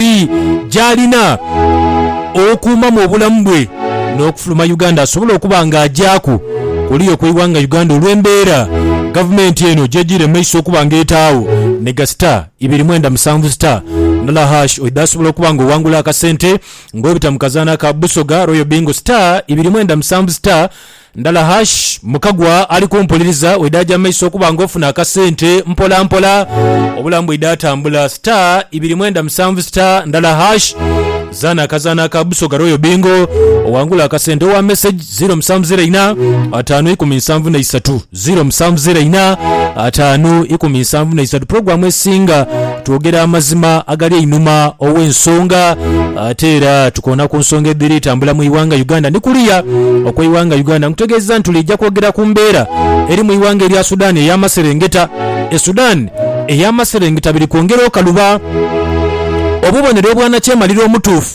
ngeri gy'alina okuumamu obulamu bwe n'okufuluma Uganda asobole okuba ng'agyaku kuliya okw'eighanga Uganda olw'embeera gavumenti eno gy'ejiire mu maiso okuba ng'etaagho ni ga star ibiri mwenda musanvu star nola hash oidha asobola okuba ng'owangula akasente ng'obita mu kazaanha ka Busoga Royal Bingo star ibiri mwenda musanvu star Ndala hash mukagwa ali kumpuliriza wedaja maiso okuba nga ofuna akasente mpola mpola obulamu bwida tambula star ibiri mwenda musanvu star ndala hash zana akazano aka busoga royal bingo owangule akasente owa message ziro musanvu ziro ina atano ikumi nsanvu na isatu Ziro musanvu ziro ina ataanu ikumi nsanvu na isatu pulogulaamu esinga twogera amazima agali einhuma ow'ensonga ate era tukoona ku nsonga edhiri tambula mu ighanga Uganda ni kuliya okw'eighanga Uganda. Nkutegeezeza nti lwija kwogera ku mbeera eri mu ighanga erya Sudan ey'amaserengeta e Sudan ey'amaserengeta biri kwongera okaluba obubonero obwanakyemalira omutuufu.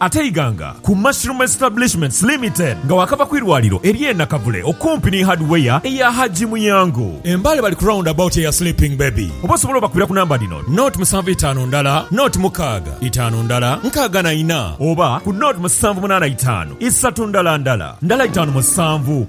Ate Iganga ku Mushroom Establishments Limited nga waakava ku irwaliro ery'e Nakavule okumpi ni Hardware eya Hajji Muyango e Mbale bali ku round about eya Sleeping Baby oba osobole obakubira ku namba dhino, naught musanvu itaanu ndala naught mukaaga itaanu ndala nkaaga na ina oba ku naught musanvu munaana itaanu isatu ndala ndala ndala itaanu musanvu.